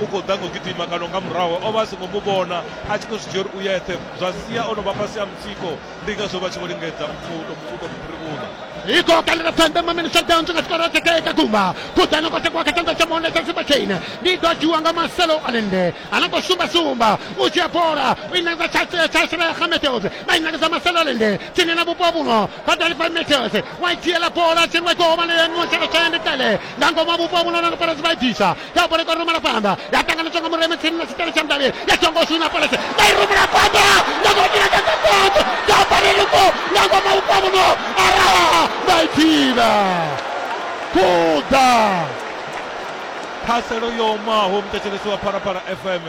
u khou ḓa nga u gidima kana nga murahu o vha a songo mu vhona a tshi khou zwi dzhia uri u yeṱhe zwa sia o no vha fhasi a mutsiko ndi ngazwo vha tshi vho lingedza uto uto mupirivhuna iko kalela sande mamini shutdown nga tshikoro tsha kae ka kumba kuḓana kwa tshakuwa kha tshanḓa tsha monde tsha simba chaine ndi ḓo dzhiwa nga maselo alende a no khou sumbasumba u dzhia bola u inakisa tshashela ya gameteos vha inakisa maselo alende tsini na vhupo vhuno vha dalifa meteos wa i dzhiela bola tsini wa ikohobana ya miwo tshaka tshaende kale nga ngoma vhupo vhuno na no parasi vha i bvisa Double kwa Ruma Rafanda. Ya tanga na chongo mureme tsini na sitele chamdali. Ya chongo sina pala se. Dai Ruma Rafanda. Na kwa kila kaka koto. Double luko. Na kwa maupamu no. Ara. Dai tina. Kuda. ṱhaselo yo omaho muthetshelesi wa phalaphala fm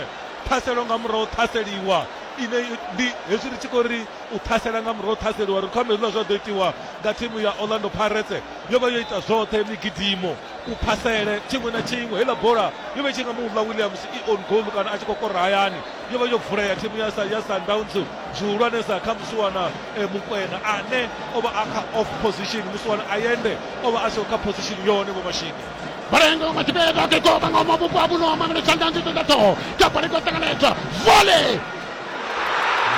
ṱhaselo nga murahu ṱhaseliwa ine ndi hezwi ri tshi khou ri u ṱhasela nga murahu ṱhaseliwa ri khou amba hezwiḽa zwa ḓo itiwa nga thimu ya orlando pirates yo vha yo ita zwoṱhe migidimo u phasele tshiṅwe na tshiṅwe heiḽa bola yo vha i tshi nga muḽa williams i on goal kana a tshi khou kora hayani yo vha yo vulea thimu ya ya sundowns zwihulwanesa kha musiwana eh, mukwena ane o vha a kha off position musiwana ayende o vha a siho kha position yone vho mashini Barengo matibeka ke ko banga mo bupwa buno mamelo chandanzi tenda to. Kapare ko tanganeta. Volley!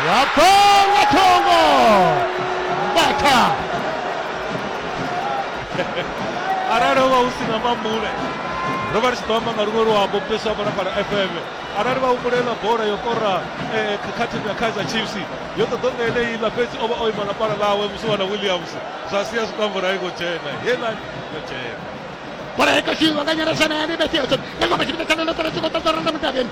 Wakonga Tongo Bata arali ho vha hu si na mambule ro vha ri tshi ḓo amba nga luṅwe luambo mupesi wa balapala fm arali vha humbulela bola yo kora eh, khathihi na kaizer chiefs yo ṱoḓo nga eneiḽa fhedzi o vha o ima na pala ḽawe musi wana williams zwa sia zwikambo ra i khou dzhena heiḽa yo dzhena Bola i khou shuma nga nyarashana ya Libesi Ocean. Nga ngoma tshipida tsha Londotoro tshi khou ṱoḓa Orlando Mudavhiani.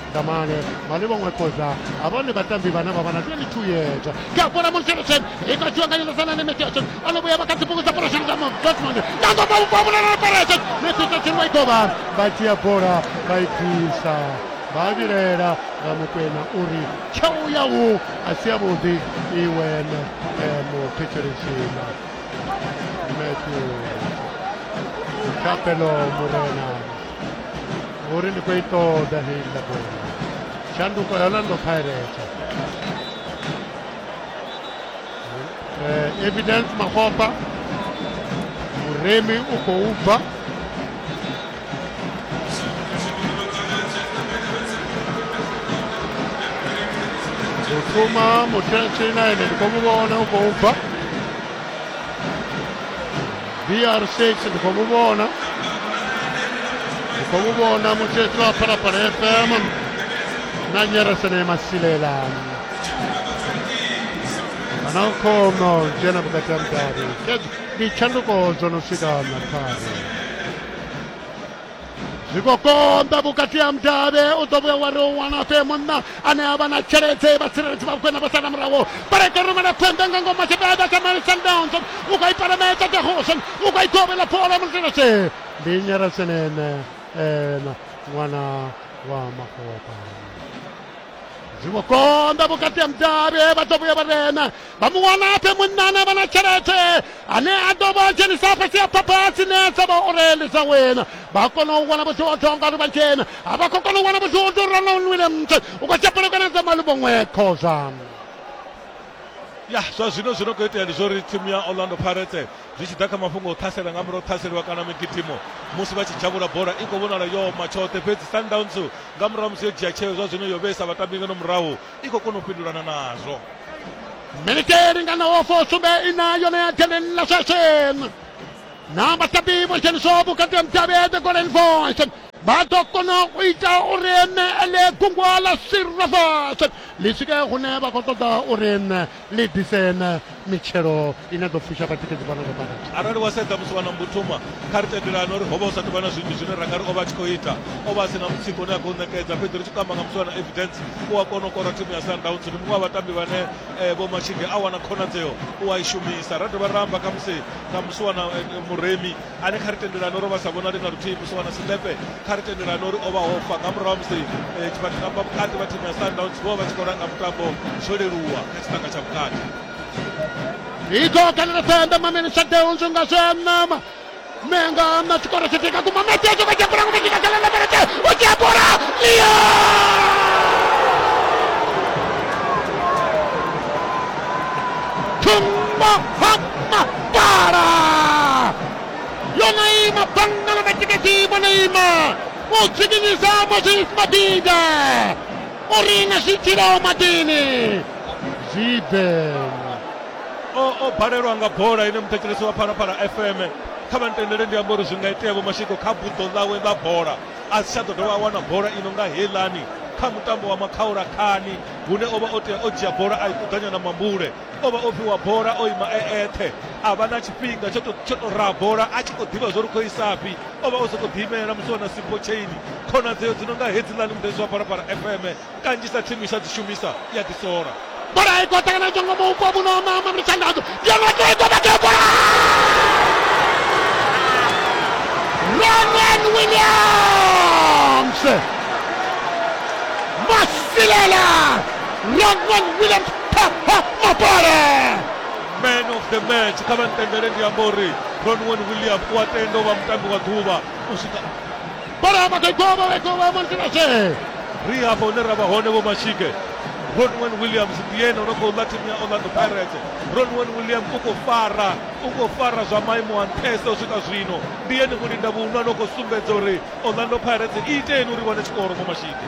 Damane vhane vho ṅwekoza ha vhone vhatambi vhane vha vha na 22 years kha bola Monserosen i khou dzhiwa nga Nyelezana ne Metiosen o no vhuya vha kha dzibugu dza Porosheni dza Dortmund na ḓo vha ubva vhulala na Peresen Metiosen wa i kovha vha dzhia bola vha i bvisa vha vhilela nga mukwena uri tshau yau a si yavhuḓi iwe muthetshelesi Matthew Thapelo Murena Uri ndi khou i ṱoḓa heiḽa bola. Shanduko ya Orlando Pirates. Eh, Evidence Mafofa. Muremi u khou bva. Zuma mutshina ene ndi khou mu vhona u khou bva. BR6 ndi khou mu vhona ndi khou mu vhona mutshetsi wa phalaphala fm na nyeresene masilelani kana u khono dzhena vhukati ha mudavhi ndi tshanduko dzo no swika na khare zwi khou konḓa vhukati ha mudavhe u ḓo vhuya wa ri u wana fe munna ane a vha na tshelede vhatsireledzi vha vhukwena vha sala muraho barekarumela pfembe nga ngoma tshibeda tsha mali sundowns u khou i palamedza dehoson u khou i kovhela bola mulilashe ndi nyerasenene ena ṅwana wa makopa zwi khou konḓa vhukati ha mudavhe vha ḓo vhuya vha rena vha mu wana a fhe munna ane vha na tshelede ane a ḓo vha dzhenisa fhasi ya phapha a tsinesa vha uri ndi dza wena vha kona u wana vhudzodzo ngauri vha dzhena a vha khou kona u wana vhudzodzo uri ana unwile mthe u khou tsha pelekana dza maluvhoṅwe khoza ya zwa zwino zwi no khou itea ndi zwa uri thimu ya orlando pirates zwi tshi ḓa kha mafhungo o ṱhasela nga murahu ṱhaseliwa kana migidimo musi vha tshi dzhavhula bola i khou vhonala yo ma tshoṱhe fhedzi sundowns nga murahu musi yo dzhia tsheo zwa zwino yo vheisa vhatambi ngeno murahu i khou kona u fhindulana nazwo miniti i linganaho fusumbe ina yone ya dzheneni ḽa sweswi na vhatambi vho dzheniswaho vhukati ha mutavhi ya the golden voice vha ḓo kona u ita uri ene ele gungwa ḽa silver voice ḽi swike hune vha khou ṱoḓa uri ni ḓise na mitshelo ine ḓo fusha vhatikedzi vhano vha bada arali wa sedza musi vha na mbuthuma kha ri tendelane uri ho vha hu sa tou vha na zwinzhi zwine ra nga ri o vha a tshi khou ita o vha a si na mutsiko une a khou ṋekedza fhedzi ri tshi kamba nga musi vha na evidence u a kona u kora thimu ya sundowns ndi muṅwe wa vhatambi vhane eh, vho mashinde a wana khonadzeo u a i shumisa ra dovha ra amba kha musi kha musi wana eh, muremi a ne kha ri tendelani uri vha sa vhonali na luthihi musi wana silepe kha ri tendelani uri o vha hofa nga murahu musi eh, tshifhaṱo tsha mba vhukati vha thimu ya sundowns vho vha tshi khou langa mutambo zwo leluwa kha tshiṱanga tsha vhukati iko kanela senda mamene shadeunzu nga zwe a nama menga na tshikoro tshi tika kuma metezo vha dzhapura ngo vha dzhika khala lemelete o dzhapura liya thumba hama Para! Yo Neymar, póngalo de chiquitivo, Neymar. Utilizamos el batida. Orina si tirou Madini. Zidane. o o balelwa nga bola ine muthetshelesi wa phalaphala fm kha vha ntendele ndi amba uri zwi nga itea vho mashiko kha buḓo ḽawe ḽa bola a si tsha ḓo dovha a wana bola ino nga heilani kha mutambo wa makhaulakhani hune o vha o tea o dzhia bola a i kuḓanya na mambule o vha o fhiwa bola o ima e eṱhe a vha na tshifhinga tsho to tsho to raha bola a tshi khou ḓivha zwo ri khou isafhi o vha o sokou ḓiimela musi wana simpo chaini khonadzeo dzi no nga hedziḽani mudedzi wa parapara fm kanzhisa thimu isha dzi shumisa ya ḓisola bola i khou ṱangana tshango maupo vhuno mama mitshandadzo yamakoikomatea bola ronan williams masilela ronan williams mapara man of the match kha vha ntendele ndi amba uri ronwen william u a tenda u vha mutambi wa ḓuvha u swika bara magoigoba wegoba montinase ri hafha hune ra vha hone vho mashike ronwen williams ndi yene o no khou ḽa thimu ya orlando pirates ronwen williams u khou fara u khou fara zwa maimo a nṱhesa u swika zwino ndi yene mulinda vhuhulwane o khou sumbedza uri orlando pirates i iteni uri wane tshikoro vho mashike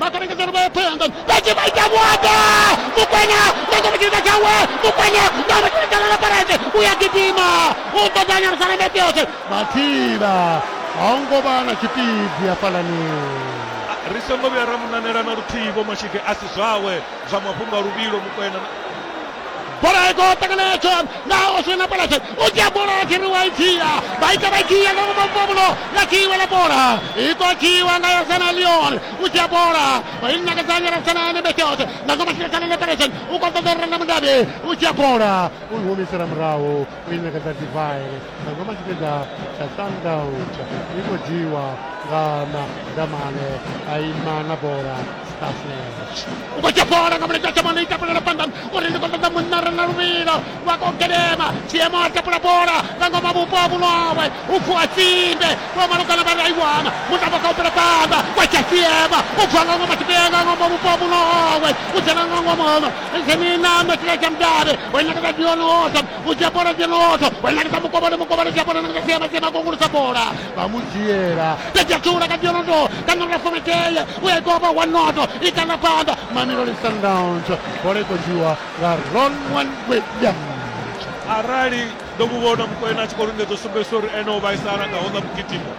makarengeza ri vhae phanḓa vha tshi vha ita vhuaḓa mukwena nga ngomu tshipiḓa tshawe mukwena nga ngomu tshipiḓa tshawe laparete u ya gidima u ṱoḓa nyalusana metiose mathila ha u ngo vha na tshipiḓi hafhalani ri songo vhuya ra munanela na luthihi vho mashige a si zwawe zwa mafhungo a luvhilo mukwena bola i khou ṱangana yatsho nga oswena palase u dzhia bola ya khiri wa i dzhia vha ita vha dzhia nga ngomu muvhulo nga tshiiwe ḽa bola i khou dzhiiwa nga yosana leon u dzhia bola vha i nakedzanya rasana ane betot nga ngomu silasana ḽa palase u khou ṱoḓa u renda mudabe u dzhia bola u i humisela murahu u i nakedza divine Nga ngoma tshipiḓa tsha sundowns i khou dzhiiwa nga madamane a ima na bola starflash u khou dzhia bola nga mulenzhe a tshamane i tapulela phanḓani uri ndi khou ṱoḓa munna re na luvhilo wa khou gedema tshiemo a tapula bola nga ngoma vhupo ha vhulwawe u vuwa tsimbe vho malugana vha ri a i wana mutambo kha u bvela phanḓa wa dzhia tsiema u vuwa nga ngoma tshipiḓa nga ngoma vhupo ha vhulwawe u dzhena nga ngoma ono zhenina metshiḽa tsha mudavhe o inakadza dionota u dzhia bola dzenodzo wa ṋangisa mukovhoni mukovhoni dzhia bola ṋangisa siema siema kongulusa bola vha mu dzhiela ta dzhia thula ka dzionoto ka ṋangula fometeye u ya ikovha wa noto i kana phanḓa mamelodi sundowns bola i khou dzhiwa nga ronwan william arali ndo mu vhona mukwena a tshi khou lingedza u sumbedzisa uri ene o vhaisala nga hola mugidimo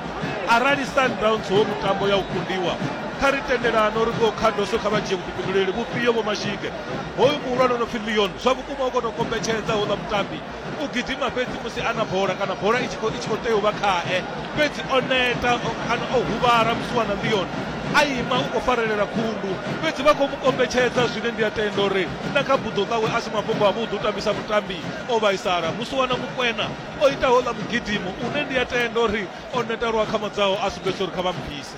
arali sundowns wo mutambo ya u kundiwa kha ri tendelano ri khou khadoso kha vha dzhie vhuḓifhinduleli vhufhio vho mashige Hoyu muhulwane o no pfi Leon zwa vhukuma u khou tou kombetshedza houḽa mutambi u gidima fhedzi musi a na bola kana bola i tshi khou i tshi khou tea u vha khae fhedzi o neta o- kana o huvhala musiwana Leon a ima u khou farelela khundu fhedzi vha khou mu kombetshedza zwine ndi a tenda uri na kha buḓo ḽawe a si mafhungo avhuḓi u tambisa mutambi o vhaisala musiwana Mukwena o ita houḽa mugidimo une ndi a tenda uri o neta lwa khamadzaho a sumbedzisa uri kha vha mu bvise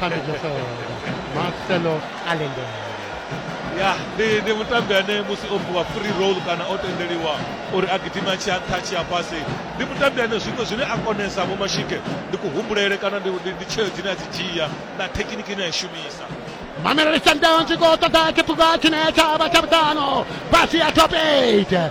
phambi nosolo marcelo alendele ya ndi ndi mutambi ane musi o fhiwa free roll kana o tendeliwa uri a gidima tshi a nṱha tshi a fhasi ndi mutambi ane zwiṅwe zwine a konesa vho mashike ndi kuhumbulele kana ndi ndi- ndi tsheo dzine a dzi dzhia na thekiniki ine a i shumisa mamelodi sundowns i khou ṱoḓa tshiphuga tshine tsha vha tsha vhuṱano fhasi ya top 8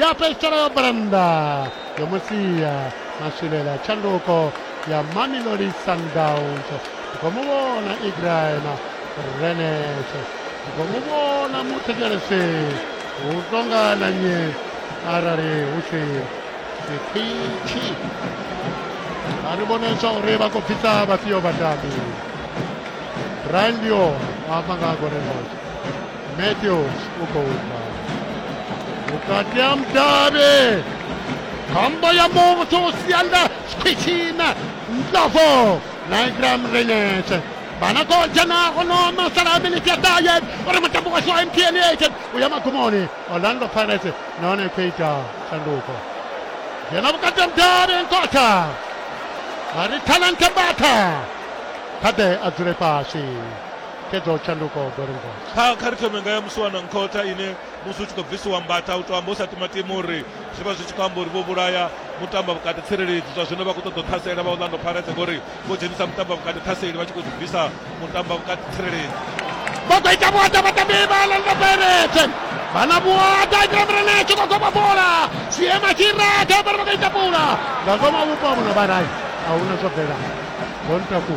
ya petsela yo branda yo musiya maswilela tshanduko ya mamelodi sundowns ndi khou mu vhona ibrahim renet ndi khou mu vhona muthetshelesi hu tonga na nyi arali hu si sikhwitshi a ri vhone zwa uri vha khou bvisa vhafhio vhatambi brian dio wa amba nga ha golden boys Matthews u khou bva vhukati ha mudavhi khombo ya muthu u sia nda khwitshina ndlovo na igram renetse vana ko dzhena ono masala a miniti ya ṱahe uri mutambo washu wa mtn eighteen u ya magumoni orlando pirates nahone i khou ita shanduko dzhena vhukati ha mudavhi nkotha a ri talente mbatha kha ḓe a dzule fhasi xedza u tshanduka wa ḓo lingotsa kha kha ri thome nga ya musi wana nkhotha ine musi u tshi khou bvisiwa mbata u tou amba u sa timatima uri zwi vha zwi tshi khou amba uri vho vhulaya mutamba vhukati tsireledzi zwa zwino vha khou ṱoḓa u ṱhasela vha orlando pirates ngori vho dzhenisa mutamba vhukati ṱhaseli vha tshi khou zwi bvisa mutamba vhukati tsireledzi vha khou ita vhuaḓa vhatambi vha orlando pirates vhana vhuaḓa a kira murena tshi khou goma bola siema tshi ratha vhari vha khou ita pula nga ngoma vhupo a vhuno vharayi a huna zwo bvelaho bontaku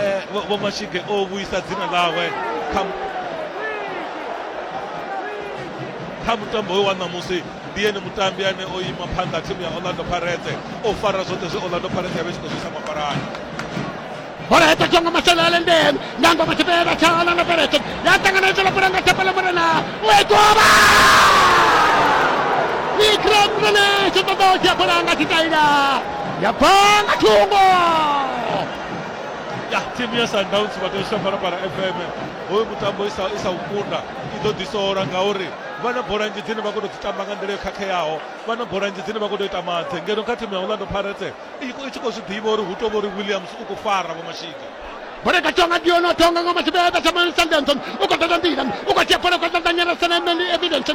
Eh, vho vho mashige o vhuisa dzina ḽawe kha mu- kha mutambo we wa ṋamusi ndi ene mutambi ane o ima phanḓa thimu ya orlando parete o fara zwoṱhe zwe orlando parete ya vha i tshi khou zwisa mapalani bola ya tatswa nga masele a lendeni ndango matshipela tsha orlando pirates ya ṱanganedza lapula nga thapelo murena u a ikoba vikram rene tshi ṱoḓa u dzhia bola nga tshitaila ya bva nga thungo ya thimu ya sundowns vha tea u shaphalaphala fm hoyu mutambo i sa i sa u kunda i ḓo ḓisola ngauri vha na bola nnzhi dzine vha khou tou dzi tamba nga nḓila yo khakheaho vha na bola nnzhi dzine vha khou tou ita madze ngeno kha thimu ya orlando pirates i khou- i tshi khou zwi ḓivha uri hu tou vha uri williams u khou fara vho mashika Bora kachonga diono tonga ngoma chibebe cha Manu Sundance. Uko tata ndira. Uko chepora kwa tata nyera sana emendi evidence.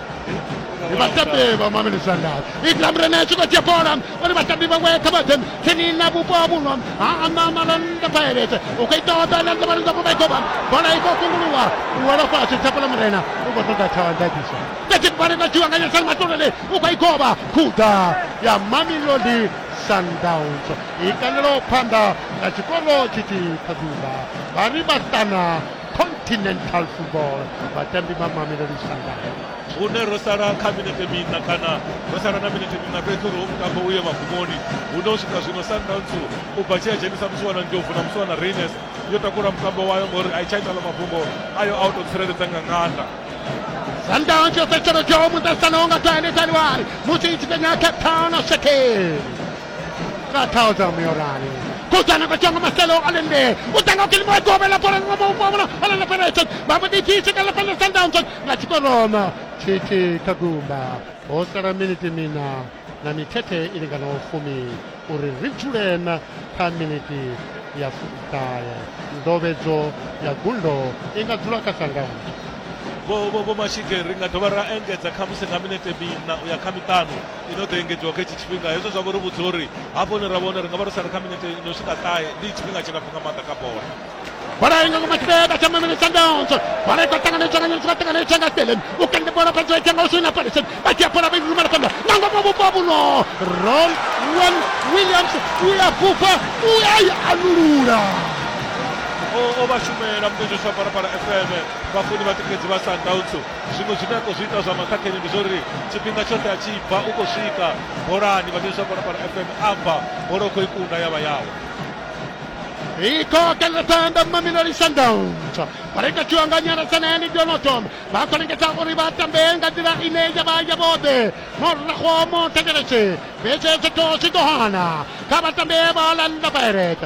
vhatambiwa mameli sandal ikram rene tshi khou dzhia bola uri vhatambi vhawe kha vha ḓe tsini na vhupo ha vhuno ha anama landa pirates u khou ita oda landa vha landa vha goba bola i khou kunguluwa u wela fhasi tshapula murena u khou ṱoḓa tshawandakiso tati bale na tshiwa nga nyasani matolele u khou i goba khuda ya mamelodi sundowns i kanelaho phanḓa na tshikolo tshithihi kha ḓuvha vha ri vhaṱana continental football vhatambi vha mamelodi sundowns hune ro sala kha minete miṋa kana ro sala na minete miṋa fhedzi uri ho mutambo uye magumoni hune u swika zwino sundowns u bva tshi a dzhenisa musi wana ndlovu na musi wana raines yo takula mutambo wayo ngori a i tsha itala mafhungo ayo a u tou tsireledza nga nganda sundowns yo fhedzisela dzhomu ṱahisana ho nga toiletaliwari musi i tshi fhenya cape town shekeli ka ṱhaho dza muyorali kudzana kwa tshango maselo a lende u tanga kilimo ya gobe la bola ngwa mu bona ala na pera tsho ba mu di tshi kala pele sundowns nga tshikoroma tshitshi kha gumba ho sala miniti mina na mithethe i linganaho fumi uri ri dzule na kha miniti ya fuṱahe ndovhedzo ya gundo i nga dzula kha sundowns vho vho vho mashike ri nga dovha ra engedza khamusi nga minete mina u ya kha miṱanu ino ḓo engedziwa kha hetshi tshifhinga hezwo zwa vha uri vhudza uri hafho hune ra vhona ri nga vha ro sala kha minete ino swika ṱahe ndi tshifhinga tshilapfu nga maanḓa kha bola bola inga ngoma kibeka tsha mamene tsha ndontsho bola ikwa tangana tsha nganyeni tsha tangana tsha ngaselen u kende bola phantsho ya tshenga usina palesen ba tsha bola ba iruma la panda nango mo bo babu no ron wan williams u ya bufa u ya ya anulula o o vha shumela mudedzi wa parapara fm vhafuni vha tikedzi vha sundowns zwiṅwe zwine a khou zwi ita zwa maṱhakheni ndi zwa uri tshifhinga tshoṱhe a tshi bva u khou swika bolani vhathetsha kona fhano fm a bva bola u khou i kunda ya vha yawe ikokela thanda mamelodi sundowns vha ri katiwa nga nyaratsanani donoton vha khou lingedza uri vha tambe nga nḓila ine ya vha ya vhoḓe morago mo thetsheletse vhetshetshetosi ḓo hana kha vhatambe vha landa pirate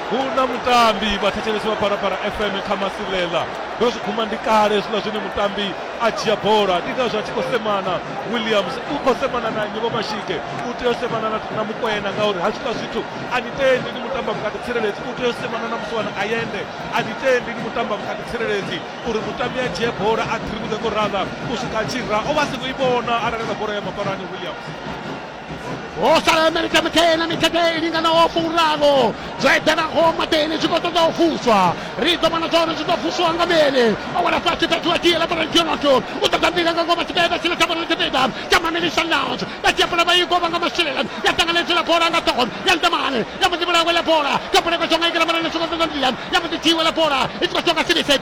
hu na mutambi vhathetshelesi vha parapara fm kha masilela ndo zwi guma ndi kale hezwiḽa zwine mutambi a dzhia bola ndi ngazwo a tshi khou semana williams u khou semana na nnyi vhomashike u tea u semana na mukwena ngauri hezwiḽa zwithu a ni tendi ni mutamba vhukati tsireledzi u tea u semana na musiwana ayende a ni tendi ni mutamba vhukati tsireledzi uri mutambi a dzhie bola a ḓirivhudze ngo rala u swika a tshi ra o vha a songo i vhona arali na bola ya mafarani williams o sala amerika mutena mithethe i linganaho furaru zwo eḓanaho maḓeni zwi khou ṱoḓa u vuswa ri ḓo vhona zwauri zwi ḓo vuswa nga mini o wela fhasi fhethu wa dzhiela borantionoto u ṱoḓa mbila nga ngoma tshipiḓa tshine tsha vhona tshipiḓa tsha mamelisa lounge vha dzhia bola vha i govha nga masheleni ya ṱanganedzela bola nga ṱhoho ya ntamane ya mbo ḓi vhulawe la bola kha buleko tsho nga ikela mara ḽi songo ṱoḓa mbila ya mbo ḓi dzhiwe la bola i tshi khou tshoka silisek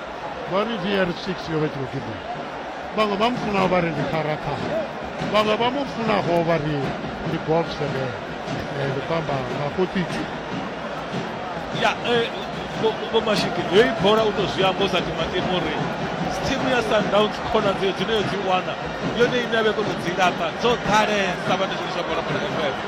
vha ri VR6 yo vha i tshi khou gidima vhaṅwe vha mu funaho vha ri ndi kharakha vhaṅwe vha mu funaho vha ri ndi golf sebe eh, ndi khou amba nga kotitshi ya eh, vhomashiki heyi bola u tou zwi amba u sa timatima uri thimu ya sundowns khonadzeo dzine yo dzi wana yone ine a vhe kono dzi lapa dzo ḓalesa vhane zwiliswa bola bola fm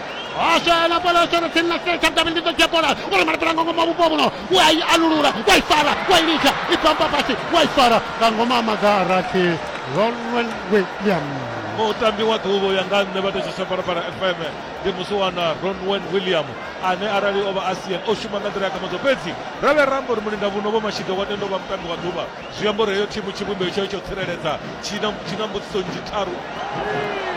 Osha la bola osha tsini na setsha davhi ndi ḓo dzhia bola u ri malapela nga ngoma vhupo vhuno u a i alulula wa i fara wa i litsha i bamba fhasi wa i fara nga ngoma a maga a rathi ronwel william mutambi wa ḓuvha u ya nga nṋe vha thetshiswa phalaphala fm ndi musiwana ronwen william ane arali o vha a sian o shuma nga nḓila ya kamadzo fhedzi ra vhe rambo ri mulinda vhuno vho mashide wa tendo vha mutambi wa ḓuvha Zwi amba uri heyo thimu tshivhumbeo tshayo tsha u tsireledza tshi na tshi na mbudziso nnzhi tharu.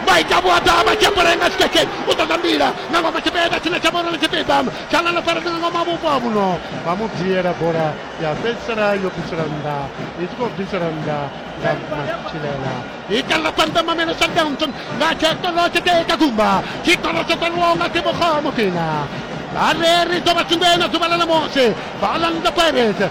maita vhuaḓa matshephore nga tshikeke u ṱoḓa mbila nga ngoma tshipiḓa tshine tsha vhona tshipiḓa tsha ḽa ḽo faredzwa nga ngoma vhupo ha muno vha mu viela bola ya fhedzisela yo bvisela nnḓa i tshi khou bvisela nnḓa nga matshilela ikalela phanḓa mamelo sundowns nga tshekolo tsheteka gumba tshikolo tsho kwaliwaho nga ṱhibogo mufina vhareri ḓo vha tshingoe na ḓuvha ḽa ṋamusi vhaḽanda pirates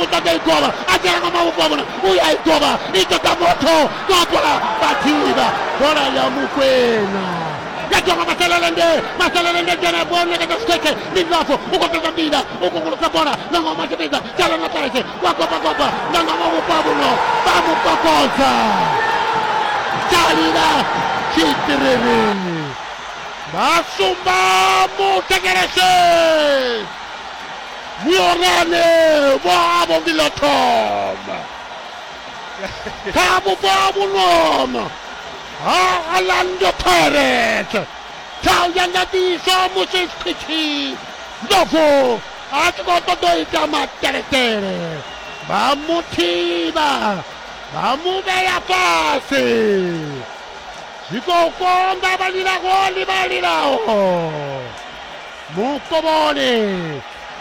u ṱoḓa i govha a dzhena nga mavhoko a vhona u ya i govha i ṱoḓa motho gopa vhathivha bola ya mukwena ya dzhonga masalelende masalelende dzhena bola neketa sikhekhe ndi ndlafo u khou ṱoḓa mbila u kungulusa bola nga ngomu a tshi vhidza dzhala na tarese wa gopagopa nga ngomu vhupo a vhuno vha mu kokodza dzhalila tshitiriri vha sumba muthekelese Vhuorane vho havho ndi ḽa thoma kha vhupo ha vhunono ha Orlando Pirates. Tshau ya nga ḓiswa musi Skhwithi Ndlovu a tshi khou ṱoḓa u ita mateletele vha mu thivha vha mu vhea fhasi zwi khou konḓa vha lilaho ndi vha lilaho mukovhoni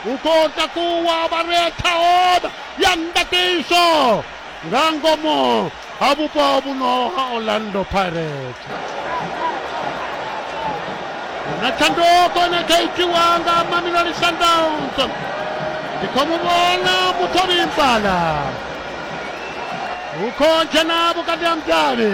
u khou takuwa vha re thaoda ya ndakiso nga ngomu ha vhupo vhuno ha orlando pirates na tshanduko ne kha itiwa nga mamelodi sundowns ndi khou mu vhona muthobi mpala u khou dzhena vhukati ha mudavhi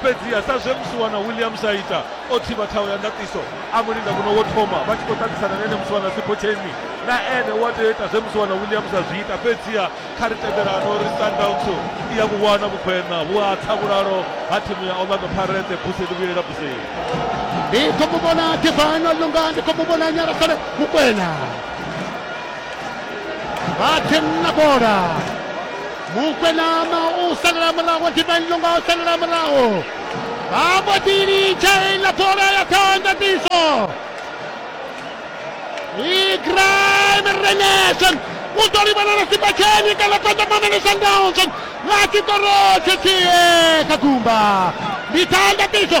Fhedziha sa zwe Musiwana Williams a ita, o thivha thaho ya ndaṱiso, a mu linda muno wo thoma, vha tshi khou ṱaṱisana na ene Musiwana Siphotheni. Na ene u a tea u ita zwe Musiwana Williams a zwi ita. Fhedziha kha ri tendelane uri Sundowns i a vhu wana vhukhweṋa vhu a tsa vhulalo ha thimu ya Orlando Pirates. Busi ḽi vhuyelela buseni. Ndi khou mu vhona Divine Olunga, ndi khou mu vhona Nyarasele Mokwena vha ḓi na bola. Mokwena ma u salela murahu Divine Lunga o salela murahu vha mbo ḓi litsha heiḽa bola ya ṱhanḓadziso Igram Renesen u ḓo livhana na Sibatsheni kana Phanḓa Mamele Sundowns vha tshi ḓo rothethihe kha gumba ndi ṱhanḓadziso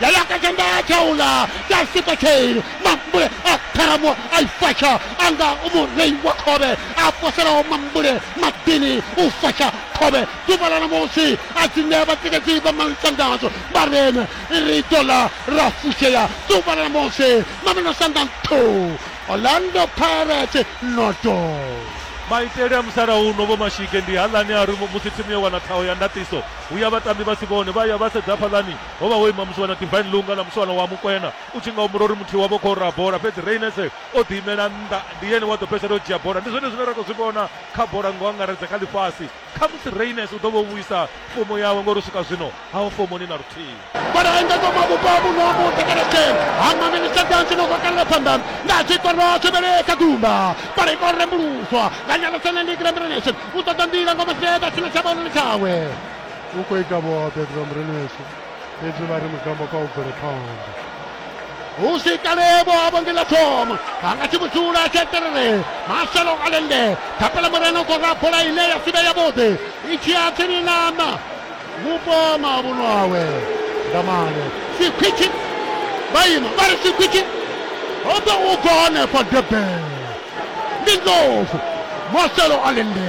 yayaka tshanḓa tsha uḽa tsha sikwa chain mambule a tharamo a i fasha a nga murei wa khovhe a poselaho mambule maḓini u fasha khovhe ḓuvha ḽa ṋamusi a dzi ṋea vhatikedzi vha malutangadzo vha rene ri ḓo ḽa ra fushea ḓuvha ḽa ṋamusi mamelo sanda nthu orlando pirate noto maitele a musalauno vho mashige ndi haḽani a ri musi thimu yo wana ṱhaho ya ndaṱiso hu ya vhatambi vha si vhone vha ya vha sedza hafhaḽani Ho vha ho ima musiwana Divine Lunga na musiwana wa Mukwena. U tshi nga humbula uri muthihi wavho u khou raha bola, fhedzi Rayners o ḓiimela nnḓa. Ndi yene wa ḓo fhedzisela o dzhia bola. Ndi zwone zwine ra khou zwi vhona kha bola nga u angaredza kha ḽifhasi. Khamusi Rayners u ḓo vha o vhuisa fomo yawe ngori u swika zwino ha ho fomoni na luthihi. Vha re engedzwa mabufho a vhuṋo ha muṱa kana sele ha mamini Sundowns no gokalela phanḓa nga zwikoro zwivhili kha gumba. Bola i khou rembuluswa nga Nyalosana Ndi Grembrelation u ṱoḓa nḓila ngoma Seeda sina tsha vhaonani tshawe. u khou ita vhoṱhe ḓivha mureni weshu fhedzi vha ri mutambo kha u bvele phanḓa hu si kalevho a vhonge ḽa thoma a nga tshi vhudzula tsheterere maselo a lende thapela murena u khou ra bola ine ya sivhe yavhuḓi i tshi ya tsini nama mupo mavhuno awe ndamane sikhwitshi vha ima vha ri sikhwitshi ho ḓo u bva hanefha debe ndi ndlovu maselo a lende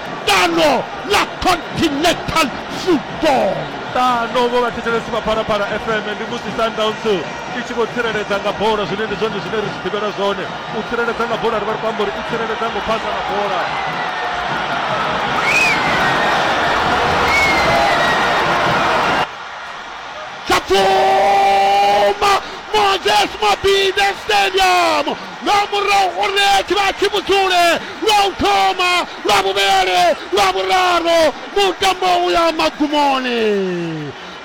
ṱano ḽa continental football ṱano vho vhathetshelesi vha phalaphala fm ndi musi sundowns i tshi vho tsireledza nga bola zwine ndi zwone zwine ri zwi ḓivhela zwone u tsireledza nga bola ri vha ri khou amba uri i tsireledza ngo phasa nga bola chapfuma moses mabinde stadium nga murahu gore tshivhatshi vhudzule lwa u thoma lwa vhuvhele lwa vhuraru mutambo u ya magumoni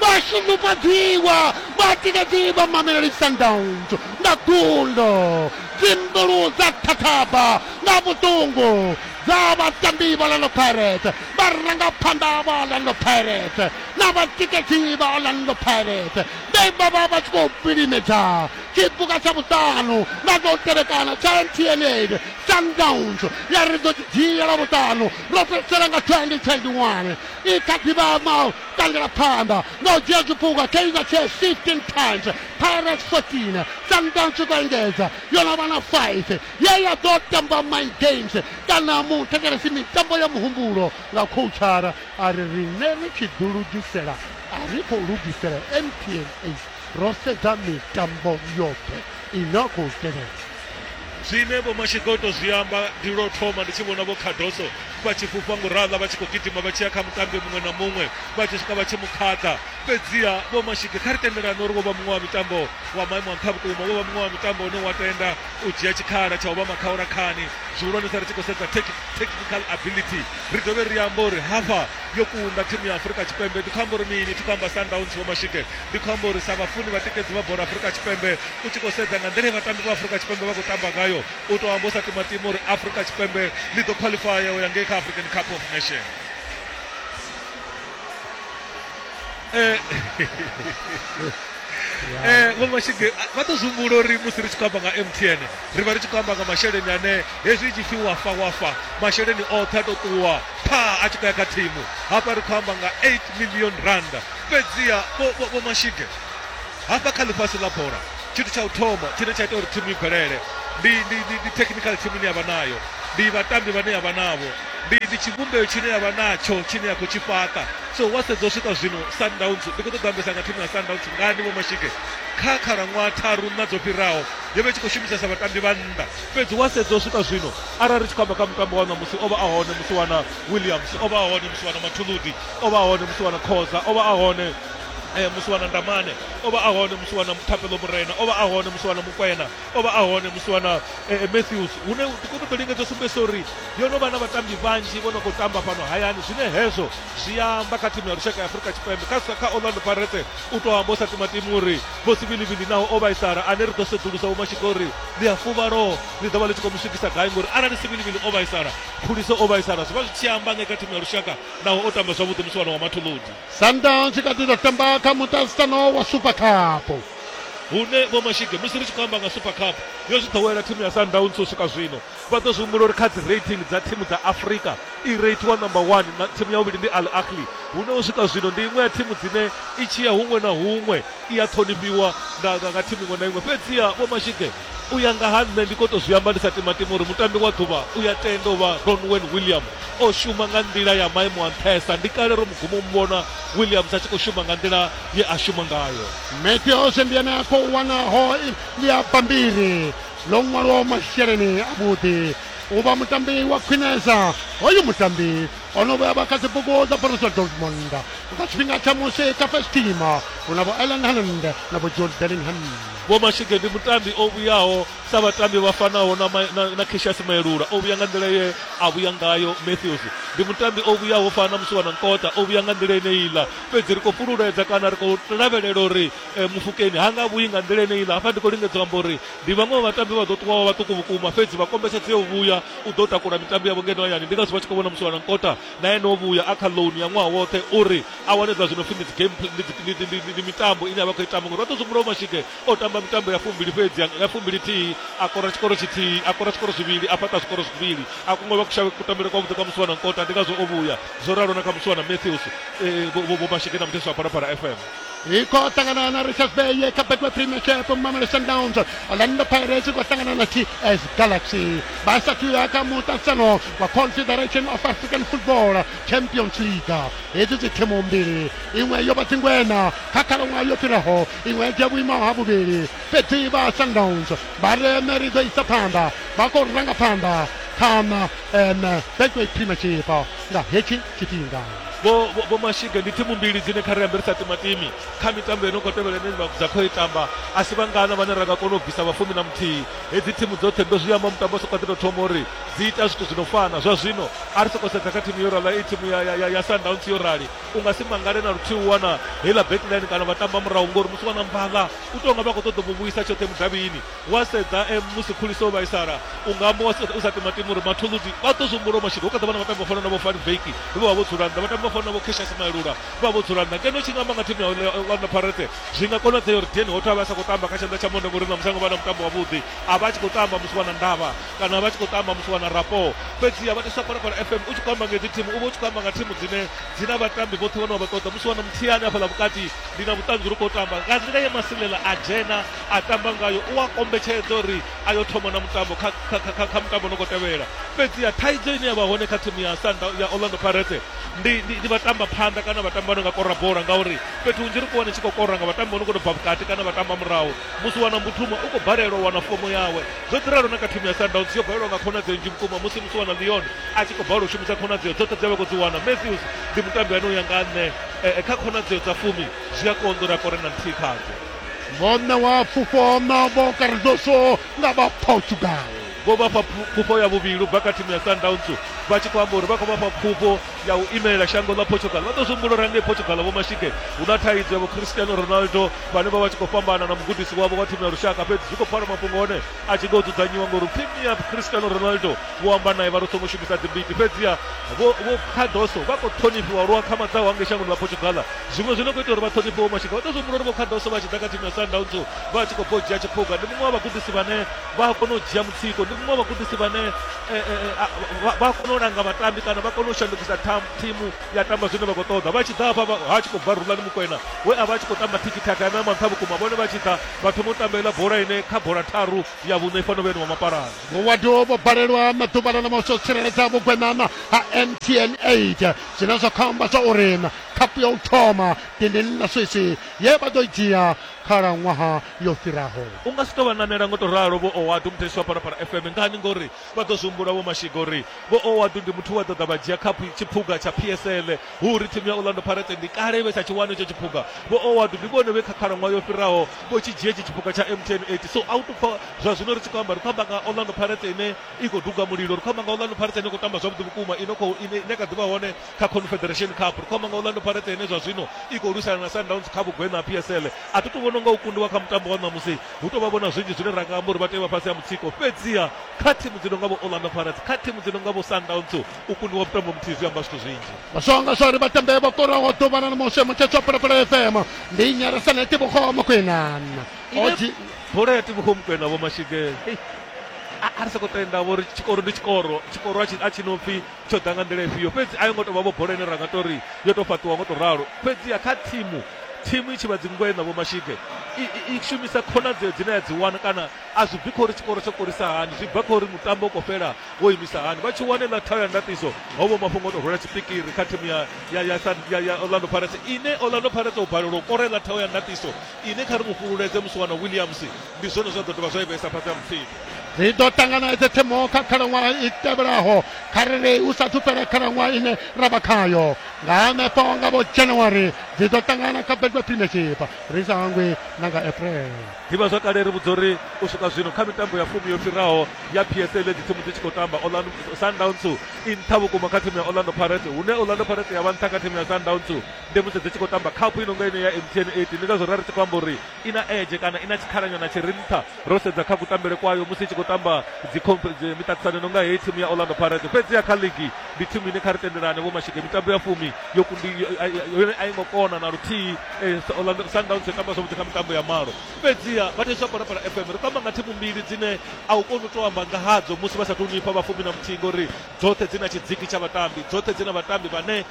vhashunufhadziwa vhatikedzi vha mameleli sundowns nga gundo dzimbulu dza thathaba nga vhuṱungu dza vhatambi vha lando pirate vharangaphanḓa vha lando pirate na vhatikedzi vha orlando pirates vhe vha vha vha tshi khou vilimedza tshipuka tsha vhuṱanu na tou tevhekana tsha mtn aid sundowns ya ri ḓo tshi dzhiela vhuṱanu ro fhedzisela nga 2021 i kha ḓivha ma tangela phanḓa na u dzhia zwipuka kaizer chiefs 15 times pirates 14 sundowns tshi khou engedza yo no vha na 5 ye ya ḓo tamba my games kana muthetshelesi mitambo ya muhumbulo nga khouchara A ri, Riṋe ri tshi ḓilugisela a ri khou lugisela NPNA, ro sedza mitambo yoṱhe i no khou tevhela. Zwine Vho Mashigoto zwi amba, Ndi lwo thoma ndi tshi vhona Vho Cardoso vha tshi fhufha ngurala vha tshi khou gidima vha tshi ya kha mutambi muṅwe na muṅwe vha tshi swika vha tshi mu khaḓa. Fhedziha Vho Mashige, kha ri tendelane uri wo vha muṅwe wa mitambo wa maimo a nṱha vhukuma, wo vha muṅwe wa mitambo une wa tenda u dzhia tshikhala tsha u vha makhaurakhaani zwihulwanesa ri tshi khou sedza technical ability. ri dovhe ri amba uri hafha yo kunda thimu ya afurika tshipembe ndi khou amba uri mini thi khou amba sundowns vho mashike ndi khou amba uri sa vhafuni vhatikedzi vha bola afurika tshipembe u tshi khou sedza nga nḓila vhatambi vha afurika tshipembe vha khou tamba ngayo u tou amba u sa timatima uri afurika tshipembe ḽi ḓo khwaḽifaya u ya ngei kha african cup of nation Eh, eh, vho mashige vha ḓo zwihumbula uri musi ri tshi khou amba nga mtn ri vha ri tshi khou amba nga masheleni ane hezwi tshi pfi wafa wafa masheleni oṱhe a tou ṱuwa pha a tshi khou ya kha thimu hafha ri khou amba nga 8 million rand fhedziha vho- vho vho mashige hafha kha ḽifhasi ḽa bola tshithu tsha u thoma tshine tsha ita uri thimu i bvelele ndi ndi ndi ndi technical team ine yavha nayo ndi vhatambi vhane yavha navho ndi ndi tshivhumbeo tshine yavha natsho tshine ya khou tshi fhaṱa So wa sedza u swika zwino Sundowns ndi khou ṱoḓa ambesa nga thimu ya Sundowns ngani vho Mashike kha khalaṅwaha tharu nṋa dzo fhiraho yo vha i tshi khou shumisesa vhatambi vha nnḓa fhedzi wa sedza u swika zwino arali ri tshi khou amba kha mutambo wa ṋamusi o vha a hone musi wana Williams o vha a hone musi wana Mathuludi o vha a hone musi wana Khoza o vha a hone eh, musi wana Ndamane o vha a hone musi wana Thapelo Murena o vha a hone musi wana Mukwena o vha a hone musi wana eh, eh, matthews hune tikonoto linge dzo sumbedzisa uri yo no vha na vhatambi vhanzhi vho no khou tamba fhano hayani zwine hezwo zwi amba kha thimu ya lushaka ya afurika tshipembe kha kha orlando parete u tou amba u sa tima timu uri vho sivilivili naho o vhaisala ane ri ḓo sedzulusa vhomashika uri ḽi a fuvhalo ḽi ḓo vha ḽi tshi khou mu swikisa gai ngori arali sivilivili o vhaisala khuliso o vhaisala zwi vha zwi tshi amba nge kha thimu ya lushaka naho o tamba zwavhuḓi musi wana wa mathuludi sundowns i kha ḓi ḓo tamba kha muṱaṱisano wa super cup hune Vho Mashige musi ri tshi khou amba nga Super Cup yo zwi ḓowela thimu ya Sundowns u swika zwino vha ḓo zwi humbula uri kha dzi rating dza thimu dza Afrika i reithiwa number 1 na thimu ya vhuvhili ndi Al Ahly hune u swika zwino ndi iṅwe ya thimu dzine i tshi ya huṅwe na huṅwe i a ṱhonifhiwa nga nga, nga thimu iṅwe na iṅwe fhedziha Vho Mashige U ya nga ha nṋe ndi khou tou zwi amba ndi sa timatimi uri mutambi wa ḓuvha u ya tenda u vha Ronwen William. O shuma nga nḓila ya maimo a nṱhesa. Ndi kale ro mu guma u mu vhona Williams a tshi khou shuma nga nḓila ye a shuma ngayo. Matthews ndi ene a khou wana ho ḽia bammbiri ḽo ṅwalwaho masheleni avhuḓi u vha mutambi wa khwinesa. Hoyu mutambi o no vhuya vha kha dzibugu dza Borussia Dortmund nga tshifhinga tsha musi kha first team hu na vho Erling Haaland na vho Jude Bellingham. Vho Mashige ndi mutambi o vhuyaho sa vhatambi vha fanaho na, na, na Cassius Maelula o vhuya nga nḓila ye a vhuya ngayo. Matthews ndi mutambi o vhuyaho u fana na Musiwana Nkota o vhuya nga nḓila eneiḽa, fhedzi ri khou fhululedza kana ri khou lavhelela uri e, Mufukeni ha nga vhuyi nga nḓila eneiḽa. Hafha ndi khou lingedza u amba uri ndi vhaṅwe vha vhatambi vha ḓo ṱuwaho vhaṱuku vhukuma, fhedzi vha kombetshedzea u vhuya u ḓo takula mitambo yavho ngeno hayani. Ndi ngazwo vha tshi khou vhona Musiwana Nkota na ene o vhuya a kha loan ya ṅwaha woṱhe uri a wane zwa zwino pfhi ndi game ndi mitambo ine a vha khou i tamba ngori vha ḓo zwihumbulo mashike o tamba mitambo ya fumbili fhedzi ya fumbili thihi a kora tshikoro tshithihi a kora tshikoro zwivhili a fhaṱa zwikoro zwivhili a kungo vha kushavhe kutambele kwa vhuḓi kwa musiwana nkota ndi ngazwo o vhuya zwo ralo na kha musiwana matthews vho mashike na muthesi wa phalaphala fm iko sangana na richards bay yekabekwe premiership mamelo sundowns orlando pirates kwasangana na ts galaxy basathu yaka mutasano wa confederation of african football champions league hedzi dzi thimu mbili iṅwe yo vha dzingwena kha khalaṅwaha yo fhiraho iṅwe dzhia vhuimo ha vhuvhili fhedzi vha sundowns vha re meri ḓo isa phanḓa vha khou ranga phanḓa khana um betway premiership nga hetshi tshifhinga. Vho Vho Mashige ndi thimu mbili dzine kha ri ambe ri sa timatimi kha mitambo ino khou tevhela ine dza khou itamba a si vhangana vhane ra nga kona u bvisa vha fumi na muthihi. Hedzi thimu dzoṱhe ndo zwi amba mutambo sokou ḓi tou thoma uri dzi ita zwithu zwi no fana. Zwa zwino a ri sokou sedza kha thimu yo rali i thimu ya, ya, ya Sundowns yo rali u nga si mangale na luthihi u wana heiḽa backline kana vha tamba murahu ngori musi vha na mvadla u tou nga vha khou ṱoḓa u mu vhuisa tshoṱhe mudavhini. Wa sedza musi Khulisa o vhaisala, u nga mu u sa timatima uri Mathuludi vha ḓo zwi humbula u mashudu. Ho kha ḓa vha na vhatambi vho fanaho na vho Van Wyk vhe vha vha vho dzula nnḓa, vhatambi vho fanaho na vho Cassius Maelula vhe vha vha vho dzula nnḓa. Ngeno u tshi nga amba nga thimu ya Orlando Pirates, zwi nga konadzea uri Dean Hotto a vhe a sa khou tamba kha tshanḓa tsha Monday ngori ṋamusi a ngo vha na mutambo wavhuḓi. A vha a tshi khou tamba musi vha na ndavha kana a vha a tshi khou tamba musi vha na rapport. Fhedziha vhathetshelesi vha Phalaphala FM, u tshi khou amba nga hedzi thimu u vha u tshi khou amba nga thimu dzine dzi na vhatambi vhoṱhe vhane wa vha ṱoḓa. Musi vha na Mthiyane hafhaḽa vhukati, ndi na vhuṱanzi uri u khou tamba nga nḓila ye Masilela a dzhena a tamba ngayo u a kombetshedza uri a yo thoma na mutambo kha, kha, kha, kha mutambo no khou tevhela fhedziha thaidzo ine ya vha hone kha thimu ya sanda ya orlando pirates ndi, ndi, ndi vhatamba phanḓa kana vhatambi vha no nga kora bola ngauri fhethu hunzhi ri khou wana tshi khou kora nga vhatambi vha no khou tou bva vhukati kana vhatamba murahu musi wana mbutuma u khou balelwa u wana fomo yawe zwo ḓi ralo na kha thimu ya sundowns yo balelwa nga khonadzeo nnzhi vhukuma musi musi wana leon a tshi khou balelwa u shumisa khonadzeo dzoṱhe dze vha khou dzi wana matthews ndi mutambi ane u ya nga nṋe eh, eh, kha khonadzeo dza fumi zwi a konḓa uri a kore na nthihi khadzo vho ṋewa pfufho na vho Cardoso nga vha Portugal vho vha fha pfufho ya vhuvhili bva kha thimu ya Sundowns vha tshi khou amba uri vha khou vha fha pfufho ya u imelela shango ḽa Portugal vha ḓo zwi humbula uri hangei Portugal vho mashike hu na thaidzo ya vho Cristiano Ronaldo vhane vha vha tshi khou fhambana na mugudisi wavho wa thimu ya lushaka fhedzi zwi khou pfala mafhungo one a tshi ḓo dzudzanyiwa ngori upfhi mia Cristiano Ronaldo vho amba naye vha ri songo shumisa dzimbiti fhedziha vho Cardoso vha khou ṱhonifhiwa lwa khamadzaho hangei shangoni ḽa Portugal Zwiṅwe zwi no khou ita uri vha ṱhonifhe Vho Mashika vha tou zwi humbula uri Vho Cardoso vha tshi ḓa kha thimu ya Sundowns vha tshi khou bva u dzhia tshiphuga. Ndi muṅwe wa vhagudisi vhane vha a kona u dzhia mutsiko, ndi muṅwe wa vhagudisi vhane vha a kona u langa vhatambi kana vha kona u shandukisa thimu ya tamba zwine vha khou ṱoḓa. Vha tshi ḓa hafha vha ha tshi khou bva Rhulani Mokwena we a vha a tshi khou tamba thikithaka ane a manṱha vhukuma, vhone vha tshi ḓa vha thoma u tamba heiḽa bola ine kha bola tharu ya vhuṋa i fanela u vha yo no vha mapalani. Vho Wadu vho balelwa na ḓuvha ḽa ṋamusi u tsireledza vhugweṋana ha MTN 8 zwine zwa khou amba zwa uri khaphu ya u thoma dindini ḽa swisi ye vha ḓo i dzhia khalaṅwaha yo fhiraho u nga si tou vha nanela ngo tou ralo vho owadu muthetshiwa parapara fm ngani ngori vha ḓo zwi humbula vho mashiga uri vho owadu ndi muthu wa ḓo ḓa vha dzhia khaphu tshiphuga tsha psl hu uri thimu ya orlando pirates ndi kale vhe tsha tshi wana itsho tshiphuga vho owadu ndi vhone vhe kha khalaṅwaha yo fhiraho vho tshi dzhia itshi tshiphuga tsha mtn 8 so a u tupfa zwa zwino ri tshi khou amba ri khou amba nga orlando pirates ine i khou duga mulilo ri khou amba nga orlando pirates ine khou tamba zwavhuḓi vhukuma ine kha ḓi vha hone kha confederation cup ri khou amba nga orlando parete ine zwa zwino i khou lwisana na sundowns kha vhugweṋa ha psl a thi tu vhono nga u kundiwa kha mutambo wa ṋamusi hu tou vha vhona zwinzhi zwine ra nga amba uri vha tea vha fhasi ha mutsiko fhedziha kha thimu dzi no nga vho orlando parete kha thimu dzi no nga vho sundowns u kundiwa mutambo muthihi zwi amba zwithu zwinzhi masonga zwa ri vhatambe vho koraho ḓuvha na mushe mutshetso wa phalaphala fm ndi nyarasa na itibogo mokwena bola ya tibogo mokwena vho mashige a ri sa khou tenda vho ri tshikoro ndi tshikoro tshikoro a tshi no pfhi tsho ḓa nga nḓila ifhio fhedzi a yo ngo tou vha vho bola ine ra nga tou ri yo tou fhaṱiwa ngo tou ralo fhedziha kha thimu thimu i tshi vha dzingwe na vhomashige i shumisa khonadzeo dzine ya dzi wana kana a zwi bvi kha uri tshikoro tsho korisa hani zwi bva kha uri mutambo u khou fhela wo imisa hani vha tshi wane ḽa thayo ya ndatiso ho vho mafhungo o tou rwela tshipikiri kha thimu ya orlando pirates ine orlando pirates u balelwa u kore ḽa thayo ya ndatiso Inwi kha ri mu fhululedze Musiwana Williams, ndi zwone zwe a ḓo dovha zwa i vhesa fhasi ha mufhiḓi. Ri ḓo ṱangana edze thimu kha khalaṅwaha i tevhelaho kha ri ri hu sathu fhela khalaṅwaha ine ra vha khayo. Nga hanefho nga vho January dzi ḓo ṱangana kha Betway Premiership ri sa hangwi na nga April. Ḓivhazwakale ri vhudza uri u swika zwino kha mitambo ya fumi yo fhiraho ya PSL edzi thimu dzi tshi khou tamba, Orlando Sundowns i nṱha vhukuma kha thimu ya Orlando Pirates hune Orlando Pirates ya vha nṱha kha thimu ya Sundowns. ndi musi dzi tshi khou tamba khaphu i nonga ino ya mtn 8 ndi ngazwo ra ri tshi khou amba uri i na edge kana i na tshikhalanyana tshi ri nṱha ro sedza kha kutambele kwayo musi i tshi khou tamba miṱaṱisano nonga heyi thimu ya orlando pirates fhedzi ya kha ligi ndi thimu ine kha ri tendelane vho mashike mitambo ya fumi yo kundi yone a i ngo kona na luthihi eh, orlando sundowns yo tamba zwavhuḓi kha mitambo ya malo fhedziha vha thetsha parapara fm ri tamba nga thimu mbili dzine a u koni u to amba nga hadzo musi vha sa tou nifha vhafumi na muthihi ngori dzoṱhe dzi na tshidziki tsha vhatambi dzoṱhe dzi na vhatambi vhane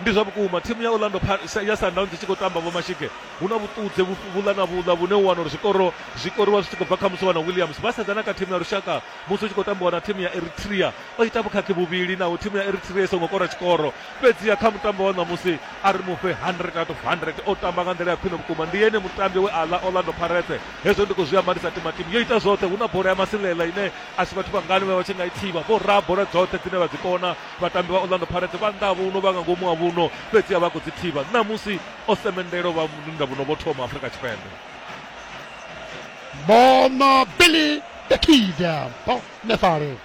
Ndi zwa vhukuma, thimu ya Orlando Pirates ya Sundowns i tshi khou tamba Vho Mashige, hu na vhuṱudze vhuḽa na vhuḽa vhune u wana uri zwikoro zwi koriwa zwi tshi khou bva kha Musuwa na Williams. Vha sedzana kha thimu ya lushaka musi hu tshi khou tambiwa na thimu ya Eritrea. O ita vhukhakhi vhuvhili naho thimu ya Eritrea i songo kora tshikoro, fhedziha kha mutambo wa ṋamusi a ri mu fhe 100 out of 100. O tamba nga nḓila ya khwine vhukuma, ndi ene mutambi we a ḽa Orlando Pirates. Hezwo ndi khou zwi amba ndi sa timatimi, yo ita zwoṱhe, hu na bola ya masilela ine a si vhathu vhangani vhe vha tshi nga i thivha. Vho raha bola dzoṱhe dzine vha dzi kona. Vhatambi vha Orlando Pirates vha nnḓa ha vhuno vha nga ngomu ha vhuno fhedziha vha khou dzi thivha ṋamusi osemendelo vha nnḓa vhuno vho thoma Afrika Tshipembe. Bona Billy the Kid Bonefale.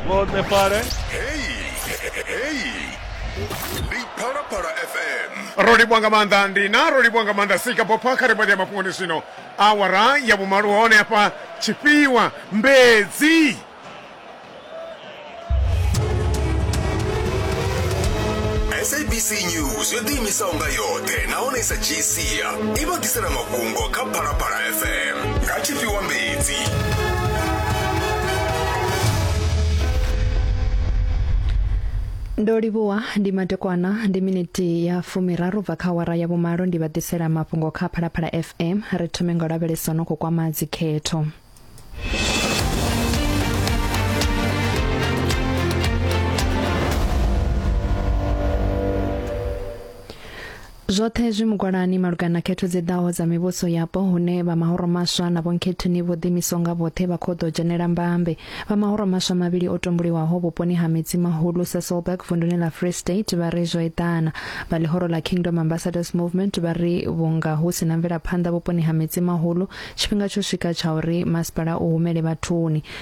Bonefale. Hey, hey. Ndi Phalaphala FM. Ro livhuwa nga maanḓa ndi na ro livhuwa nga maanḓa sika bopha kha ri vha ḽia mafhungoni zwino Awara ya vhumalo hone hafha Tshifhiwa Mbedzi. sabc news yo ḓiimisaho nga yoṱhe nahone i sa dzhii sia i vha ḓisela mafhungo kha phalaphala fm nga tshifhiwa mbedzi Ndo livhuwa ndi madekwana ndi miniti ya fumiraru bva kha awara ya vhumalo ndi vha ḓisela mafhungo kha Phalaphala FM ri thome nga lavhelesa no khou kwama dzikhetho. Zwoṱhe zwi mugwalani malugana na khetho dzi ḓaho dza mivhuso yapo hune vha mahoro maswa na vhonkhethini vho ḓimiswa nga vhoṱhe vha khou ḓo dzhenela mbambe. Vha mahoro maswa mavhili o tumbuliwaho vhuponi ha Midzi Mahulu, Sasolburg, vunduni ḽa Free State vha ri zwo eḓana. Vha ḽihoro ḽa Kingdom Ambassadors Movement vha ri vhunga hu si na mvelaphanḓa vhuponi ha Midzi Mahulu, tshifhinga tsho swika tsha uri masipala u humele vhathuni.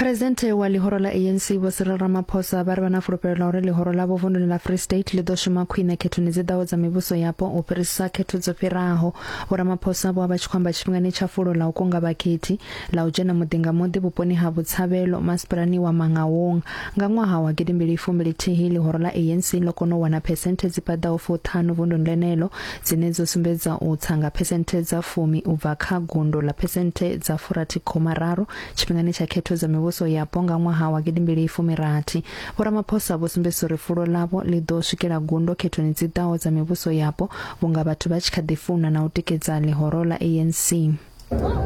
Phuresidennde wa ḽihoro ḽa ANC Vho Cyril Ramaphosa vha ri vha na fulufhelo ḽa uri ḽihoro ḽavho vunḓuni ḽa Free State ḽi ḓo shuma khwine khethoni dzi ḓaho dza mivhuso yapo u fhirisisa khetho dzo fhiraho. Vho Ramaphosa vho vha tshi khou amba tshifhingani tsha fulo ḽa u kunga vhakhethi ḽa u dzhena muḓi nga muḓi vhuponi ha Botshabelo masipalani wa Mangaung. Nga ṅwaha wa gidimbili fumi ḽithihi ḽihoro ḽa ANC ḽo kona u wana phesenthe dzi paḓaho fuṱhanu vunḓuni ḽeneḽo dzine dzo sumbedza u tsa nga phesenthe dza fumi u bva kha gundo ḽa phesenthe dza furathi khoma raru tshifhingani tsha khetho dza mivhuso yapo nga ṅwaha wa gidimbili fumirathi vhoramaphosa vho sumbedzisa uri fulo ḽavho ḽi ḓo swikela gundo khethoni dzi ḓaho dza mivhuso yapo vhunga vhathu vha tshi kha ḓi funa na u tikedza ḽihoro ḽa anc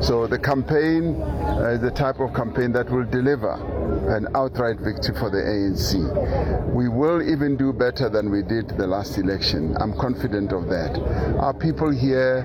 So the campaign uh, is the type of campaign that will deliver an outright victory for the ANC. We will even do better than we did the last election. I'm confident of that. Our people here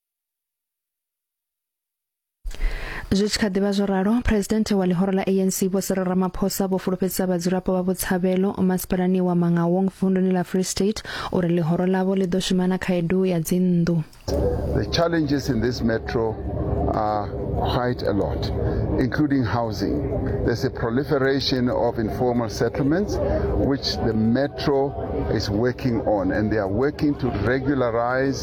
zwi tshi kha ḓivha zwo ralo presidente wa ḽihoro ḽa anc vho siri ramaphosa vho fulufhedzisa vhadzulapo vha vhutshavhelo masipalani wa mangawong vunduni ḽa free state uri ḽihoro ḽavho ḽi ḓo shuma na khaedu ya dzinnḓu the challenges in this metro are quite a lot, including housing. There's a proliferation of informal settlements, which the metro is working on, and they are working to regularize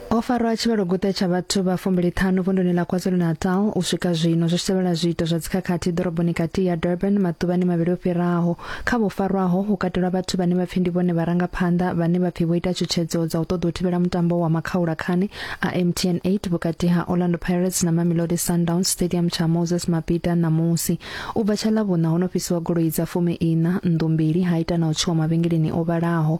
Ho farwa tshivhaloguṱe tsha vhathu vha fumbiliṱhanu vunduni ḽa KwaZulu-Natal u swika zwino zwi tshi tevhela zwiito zwa dzikhakhathi ḓoroboni kati ya Durban maḓuvhani mavhili o fhiraho. Kha vho farwaho hu katelwa vhathu vhane vha pfi ndi vhone vharangaphanḓa vhane vha pfi vho ita tshutshedzo dza u ṱoḓa u thivhela mutambo wa makhaula khani a MTN 8 vhukati ha Orlando Pirates na Mamelodi Sundowns Stadium tsha Moses Mabhida ṋamusi. U bva tsha Ḽavhuṋa ho no fhisiwa goloi dza fumi iṋa nnḓu mbili ha ita na u tswiwa mavhengeleni o vhalaho.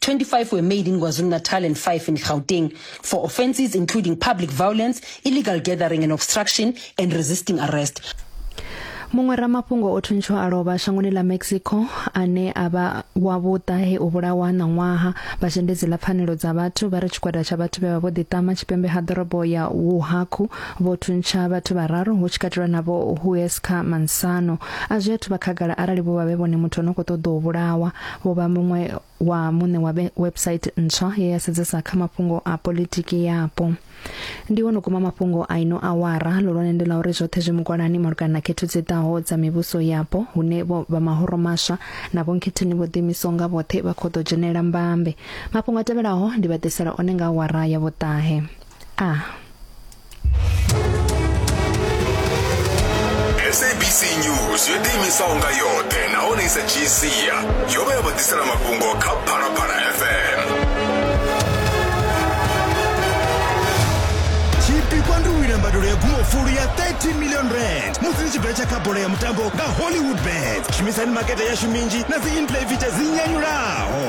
25 were made in KwaZulu-Natal and 5 in Gauteng for offences including public violence, illegal gathering and obstruction and resisting arrest. muṅwe ramafhungo o thuntsho a lovha shangoni ḽa mexico ane a vha wa vhuṱa he u vhulawa ṋaṅwaha vha zhendedzi ḽa pfanelo dza vhathu vha ri tshigwada tsha vhathu vhe vha vho ḓiṱama tshipembe ha ḓorobo ya wuhaku vho thuntsha vhathu vhararu hu tshi katelwa navho huesca mansano a zwi athu vha khagala arali vho vha vhe vhone muthu o no khou ṱoḓa u vhulawa vho vha muṅwe wa muṋe wa website ntswa ye ya sedzesa kha mafhungo a politiki yapo ndi wono kuma mafhungo a ino awara lolwane ndi la uri zwoṱhe zwi mugwalani malugana na khetho dzi ḓaho dza mivhuso yapo hune vho vha mahoro maswa na vhonkhetheni vho ḓimiso nga vhoṱhe vha khou ḓo dzhenela mbambe mafhungo a tevhelaho ndi vha ḓisela one nga awara ya vhuṱahe a ah. sabc news yo ḓiimisaho nga yoṱhe nahone i sa dzhii sia yo vha ya vha ḓisela mafhungo kha phalaphala fm tshipikwa ndi u wina mbadelo ya gumofulu ya 30 million rand musi ni tshi betsha kha bola ya mutambo nga hollywood bet shumisani makete yashu minzhi na dzi intlevitsha dzi nyanyulaho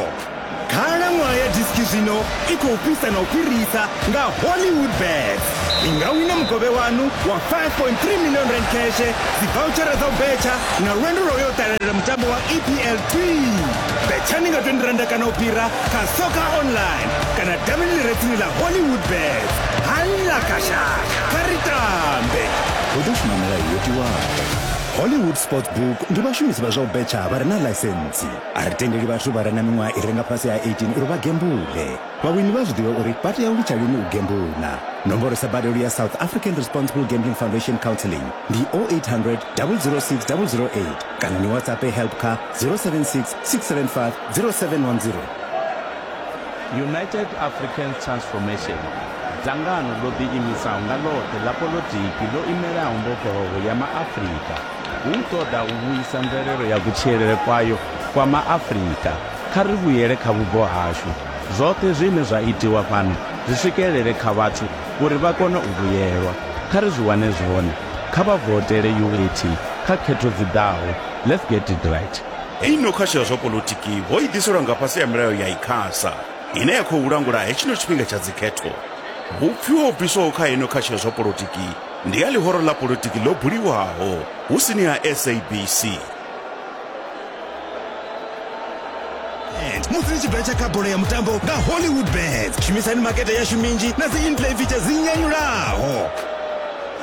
Khalaṅwaha ya diski zwino i khou fhisa na u fhirisa nga Hollywoodbets. Ni nga wina mukovhe waṋu wa R5.3 million kheshe, dzivouchara dza u betsha na lwendo lwa u yo ṱalela mutambo wa EPL Twii! Betshani nga R20 kana u fhira kha Soccer Online kana davhini ḽi re tsini ḽa Hollywoodbets. Halla kashaka! Kha ri tambe! Hu ḓo shuma milayo yo tiwaho. Hollywood Sportsbook ndi vhashumisi vha zwa u betsha vha re na ḽaisentsi. A ri tendeli vhathu vha re na miṅwaha i re nga fhasi ha 18 uri vha gembule. Vhawini vha a zwi ḓivha uri vha tea u litsha lini u gembula. Nomboro sa badelo ya South African Responsible Gambling Foundation Counselling ndi 0800 006 008 kana ni WhatsApp help kha 076 675 0710. United Africans Transformation, dzangano ḽo ḓiimisaho nga ḽoṱhe ḽa poḽotiki ḽo imelaho mbofholowo ya Maafrika. Hu u ṱoḓa u vhuisa mvelelo ya kutshilele kwayo kwa MaAfrika, kha ri vhuyele kha vhubvo hashu, zwoṱhe zwine zwa itiwa fhano zwi swikelele kha vhathu uri vha kone u vhuyelwa. Kha ri zwi wane zwone. Kha vha votele UAT kha khetho dzi ḓaho. Let's get it right. Hei no khasho ya zwa polotiki ho i ḓiselwa nga fhasi ha milayo ya Icasa ine ya khou langula hetshino tshifhinga tsha dzikhetho. Vhupfiwa ho bviswaho kha hei no khasho ya zwa polotiki Ndi ya ḽihoro ḽa politiki ḽo buliwaho hu sini ha SABC. musi ni tshi betsha kha bola ya mutambo nga hollywood bet shumisani makete yashu minzhi na dzi inplay feature dzi nyanyulaho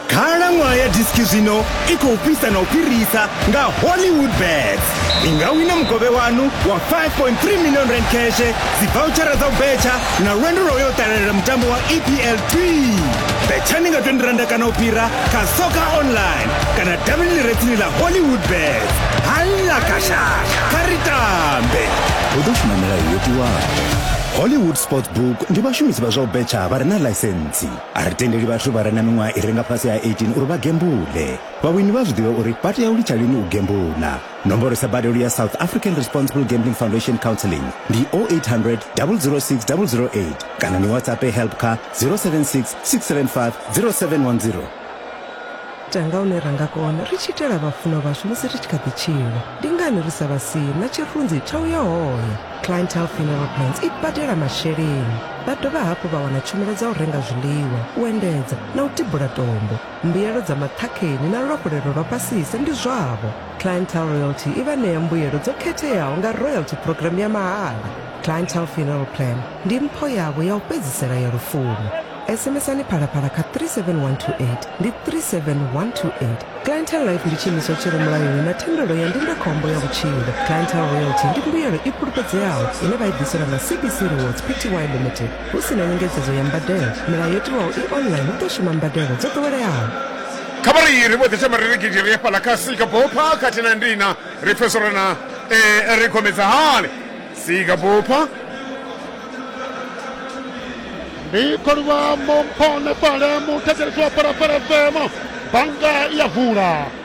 khalaṅwaha ya diski zwino i khou fhisa na u fhirisa nga hollywood bet ni nga wina mukovhe wanu wa 5.3 million rand cashe dzivouchara dza u betsha na lwendo lwa u yo ṱalelela mutambo wa epl 2 betshani nga 20 randa kana u fhira kha soka online kana davhini ḽirethini ḽa hollywood bet halla kashasha kha ri tambe hu ḓo shuma milayo yo tiwaho hollywood sport book ndi vhashumisi vha zwa u betsha vha re na ḽaisentsi a ri tendeli vhathu vha re na miṅwaha i renga fhasi ha 18 uri vha gembule vhawini vha zwi ḓivhe uri vha tea u litsha lini u gembula Nomboro sa badelo ya South African Responsible Gambling Foundation Counseling ndi 0800 006 008 kana ni WhatsApp help kha 076 675 0710. ita nga hune ra nga kona ri tshi itela vhafunwa vhashu musi ri tshi kha ḓi tshila ndi ngani ri sa vha sii na tshirunzi tsha u ya hone clientele funeral plans i badela masheleni vha dovha hafhu vha wana tshumelo dza u renga zwiḽiwa u endedza na u tibula tombo Mbuyelo dza maṱhakheni na luhafhulelo lwa fhasisa ndi zwavho. Clientele Royalty i vha ṋea mbuyelo dzo khetheaho nga Royalty Programme ya mahala. Clientele Funeral Plan ndi mpho yavho ya u fhedzisela ya lufuno. SMS-ani Phalaphala kha 37128, ndi 37128. Clientele Life ndi tshiimiswa tshi re mulayoni na thendelo ya ndindakhombo ya vhutshilo. Clientele Royalty ndi mbuyelo i fhulufhedzeaho ine vha i ḓiselwa nga CBC Rewards Pty Limited. hu si na nyengedzedzo ya mbadelo milayo yo tiwaho i online hu ḓo shuma mbadelo dzo ḓoweleaho kha vha ri ri vho ḓisa maririgidi ri afhaḽa kha sika bopha khathihi na ndina ri pfesa uri na eh, ri khomedza hani sika bopha ndi kholiwa momphone fale muthetshelesi wa phalaphala fm bannga ya vula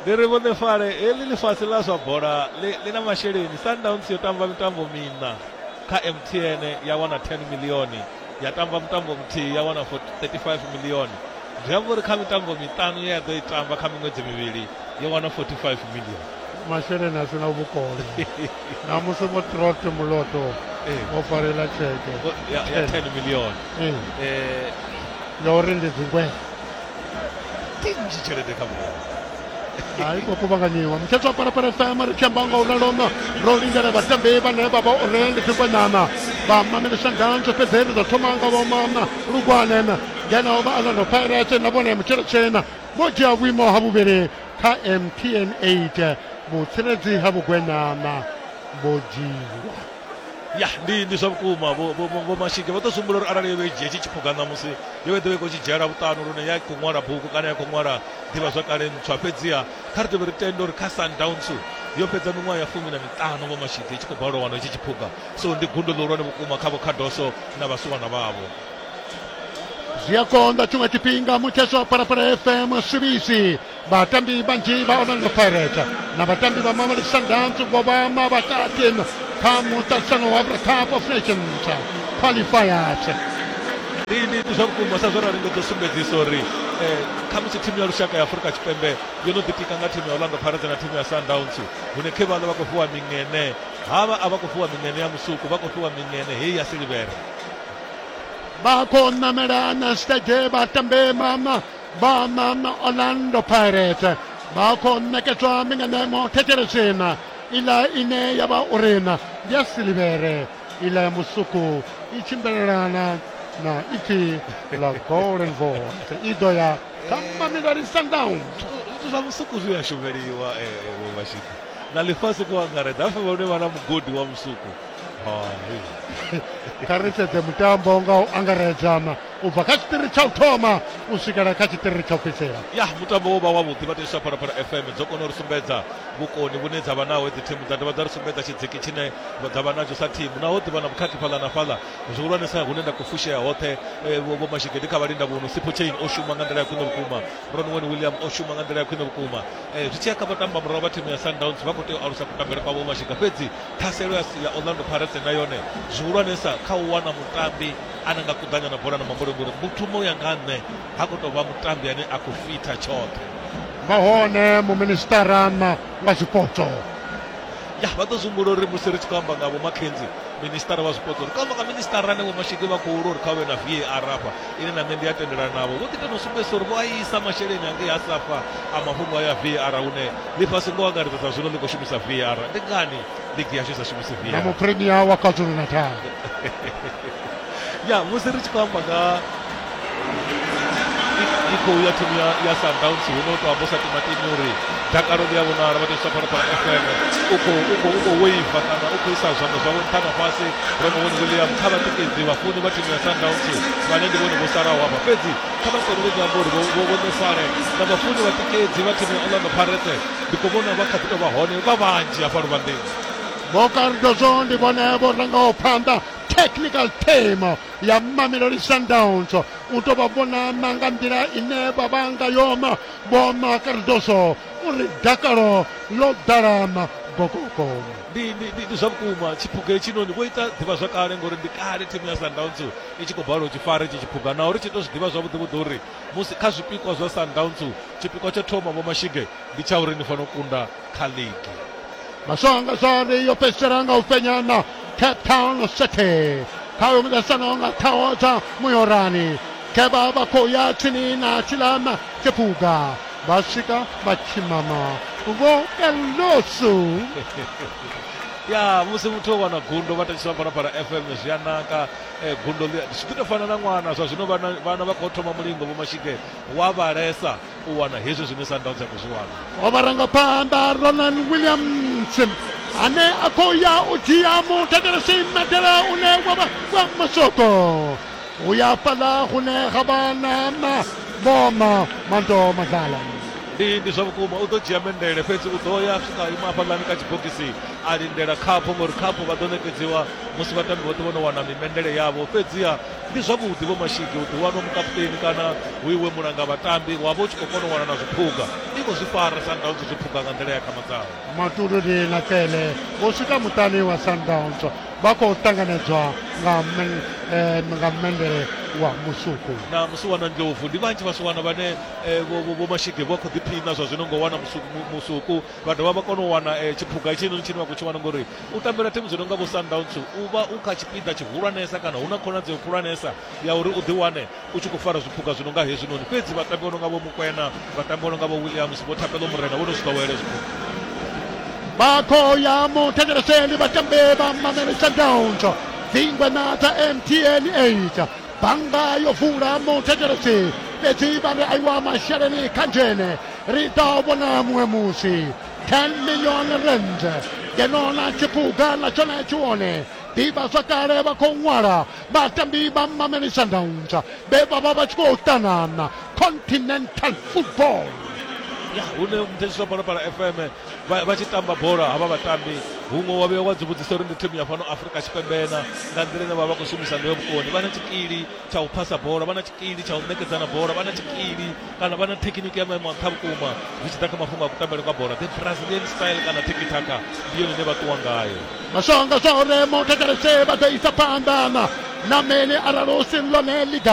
Ndi ri vhuḓifare heḽi ḽifhasi ḽa zwa bola ḽi, ḽi na masheleni. Sundowns yo tamba mitambo miṋa kha MTN ya wana 10 milioni, ya tamba mutambo muthihi ya wana 35 milioni. Zwi amba uri kha mitambo miṱanu ye ya ḓo i tamba kha miṅwedzi mivhili yo wana 45 milioni. masheleni a si na vhukono namusi mutrot muloto o farela tsheke ya 10 milioni ya uri ndi dzingwee Ke nnzhi tshelede kha muṅwe a i khou kuvhanganyiwa mukhethwa parapara fm ri tshi amba nga u ralo ro lindela vhatambi vhane vha vha uri ndi dzikwanyana vha mamele shangantsho fhedzi ri ḓo thoma nga vhomana lugwane ngeno vha alano pirate na vhone mutshelo tshena vho dzhia vhuimo ha vhuvhili kha mtn 8 vhutsiredzi ha vhugwenyana vho dzhiwa ya ndi ndi zwa vhukuma vho vho vho mashike vho to sumbula uri arali yo vha i dzhia tshi tshiphuga ṋamusi yo vha ḓovha i khou tshi dzhiela vhuṱanu lune ya khou ṅwala bugu kana ya khou ṅwala ḓivha zwa kale ntswa fhedziha kha ri tovhe ri tende uri kha sundowns yo fhedza miṅwaha ya fumi na miṱanu vho mashike i tshi khou balelwa wana itshi tshiphuga so ndi gundo ḽihulwane vhukuma kha vhokhadoso na vhasiwana vhavho zwi a konḓa tshiṅwe tshifhinga mutheswa phalaphala fm swivisi vhatambi vhanzhi vha orlando pirate na vhatambi vha mamali sundowns vho vha mavhakati kha muṱaṱisano wa cup of nations qualifiers ndi zwa vhukuma sa zwo rali ndo ḓo sumbedzisa uri eh, khamusi thimu ya lushaka ya afurika tshipembe yo no ḓitika nga thimu ya orlando pirates na thimu ya sundowns hune khe vhaḽa vha khou fhiwa miṅene havha a vha khou fhiwa miṅene ya musuku vha khou fhiwa miṅene heyi ya silivhere vha khou ṋamela na stage vha tambe mama Banan Orlando Pirates ba khou ṋekedzwa mbinganyamo thekhere tshena iḽa ine ya vha uri na ndi ya silivhere iḽa ya musuku i tshimbilelana na ipfi la golden voice i ḓo ya kha mamelodi sundowns zwithu zwa musuku zwi a shumeliwa vho vhashidi na ḽifhasi kho angaredza hafhe vhone vha na mugodi wa musuku kha ri sedze mutambo nga u angaredzana u bva kha tshiṱiri tsha u thoma u swikela kha tshiṱiri tsha u fhedzisela ya mutambo wo vha wavhuḓi vhateswa phalaphala fm dzo kona u ri sumbedza vhukoni vhune dza vha naho dzi thimu dza dovha dza ri sumbedza tshidziki tshine dza vha natsho sa thimu naho ḓivha na vhukhakhi fhaḽa na fhaḽa zwihulwanesa hune nda khou fushea hoṱhe eh, vho mashigedi kha vhalinda vhuno sipho chain o shuma nga nḓila ya khwine vhukuma ronwen william o shuma nga nḓila ya khwine vhukuma eh, zwi tshi ya kha vhatamba murahu vha thimu ya sundowns vha khou tea u alusa kutambele kwa vho mashiga fhedzi ṱhaselo ya orlando pirates na yone zwihulwanesa kha u wana mutambi ana nga kuḓanya na bola na muhumbulo ngori muthu mu ya nga nṋe ha khou tou vha mutambi ane a khou fitha tshoṱhe nahone muministara na nga zwipotso ya vha ḓo zwimbula uri musi ri tshi khou amba nga vho makenzi ministara wa zwipotso ri khou amba nga ministara ane vho mashiki vha khou lwa uri kha vhe na var hafha ine na nṋe ndi a tendelana navho vho ḓi tenda u sumbedzisa uri vho a isa masheleni angei a safa a mafhungo aya var hune ḽifhasi ngo angaredza sa zwino ḽi khou shumisa var ndi ngani Ndi ya shumisa shumisa na mu premier wa KwaZulu Natal ya musi ri tshi khou amba nga i khou ya thimu ya ya Sundowns hu no to amba sa timatimi uri dakalo ḽi a vhonala vha tshi fara fara FM u khou u khou u khou waiva kana u khou isa zwanḓa zwavho nṱha na fhasi ro no vhona William kha vhatikedzi vhafuni vha thimu ya Sundowns vhane ndi vhone vho salaho hafha fhedzi kha vha kone u amba uri vho vho vho ṋefale na vhafuni vhatikedzi vha thimu ya Orlando Pirates ndi khou vhona vha kha ḓi tou vha hone vha vhanzhi hafha luvhanḓeni vho cardozo ndi vhone vho rangaho phanḓa technical team ya mamelodi sundowns u tou vha vhona na nga nḓila ine vha vha nga yoma vho ma cardozo uri dakalo ḽo ḓalama gogogo ndi ndi- ndi- ndi zwa vhukuma tshiphuga hetshinoni vho ita ḓivhazwakale ngori ndi kale thimu ya sundowns i tshi khou balelwa u tshi fara itshi tshiphuga naho ri tshi tou zwi ḓivha zwavhuḓi vhuḓi uri musi kha zwipikwa zwa Sundowns tshipikwa tsho thoma Vho Mashige ndi tsha uri ni fanela u kunda kha ligi. Maswange Zari yo fhedzisela nga u fhenya na Cape Town City kha uyo muḓasano nga ṱhaho dza Muyorani ke vha vha khou ya tsini na Tshilama Tshiphuga vha swika vha tshimama vho Elosu ya musi muthu o wana gundo vha thetshelesa phalaphala fm zwi a naka Eh, gundo ḽi zwi ḓi tou fana na ṅwana zwa zwino vhana vhana vha khou thoma mulingo vho mashike wa vhalesa u wana hezwi zwine sundowns ya khou zwi wana o vharangaphanḓa ronan williams ane a khou ya u dzhia mutakalasi medela une wa vha wa masoko u ya fhaḽa hune ha vha na maboma mando madlala ndi ndi zwa vhukuma u ḓo dzhia mendele fhedzi u ḓo ya swika ima hafhaḽani kha tshibogisi a lindela khaphu ngori khaphu vha ḓo ṋekedziwa musi vhatambi vhoṱhe vho no wana mimendele yavho fhedziha ndi zwavhuḓi vho mashigi u ḓiwanwa mukaputeni kana hu iwe mulanga vhatambi wa vha u tshi khou kona u wana na zwiphuga i khou zwi fara sundowns zwiphuga nga nḓila ya khama dzaho matuluni na kele vho swika muṱani wa sundowns vha khou ṱanganedzwa nga eh, nga mendele wa musuku na musuwana ndlovu ndi vhanzhi vhasuwana vhane eh, vho mashige vha khou ḓiphina zwa zwino ngo wana musuku vha dovha vha kona u wana eh, tshiphuga itshinoni tshine vha khou tshi wana ngori U tambela thimu dzi nonga vho Sundowns u vha u kha tshipiḓa tshihulwanesa kana hu na khonadzeo khulwanesa ya uri u ḓiwane u tshi khou fara zwiphuga zwi nonga hezwinoni fhedzi vhatambi vho nonga vho Mukwena vhatambi vho nonga vho Williams vho Thapelo Morena vho no zwi ḓowela hezwi Bakhoyamo thetsheleseni vhatambi vha Mamelodi Sundowns dzingwe na dza MTN 8 bannga yo vula muthetshelesi fhedzi vha ri aiwa masheleni kha nzhene ri ḓa vhona muṅwe musi 10 million rand ngeno na tshipuga na tshone tshi wone ḓivhazwakale vha khou ṅwala vhatambi vha mameli sundowns vhe vha vha vha tshi khou ṱanana continental football ya hune muthetshisa phalaphala fm vha vha tshi tamba bola havha vhatambi huṅwe wa vhuya wa dzi vhudzisa uri ndi thimu ya fhano afurika tshipembe na nga nḓila ine vha vha vha khou shumisa ngayo vhukoni vha na tshikili tsha u phasa bola vha na tshikili tsha u ṋekedzana bola vha na tshikili kana vha na thekhiniki ya maimo a nṱha vhukuma zwi tshi ḓa kha mafhungo a kutambele kwa bola the brazilian style kana tikitaka ndi yone ine vha ṱuwa ngayo mashango zwa oremo thetshelese vha ḓo isa phanḓa na mene arali hu si ḽone ḽiga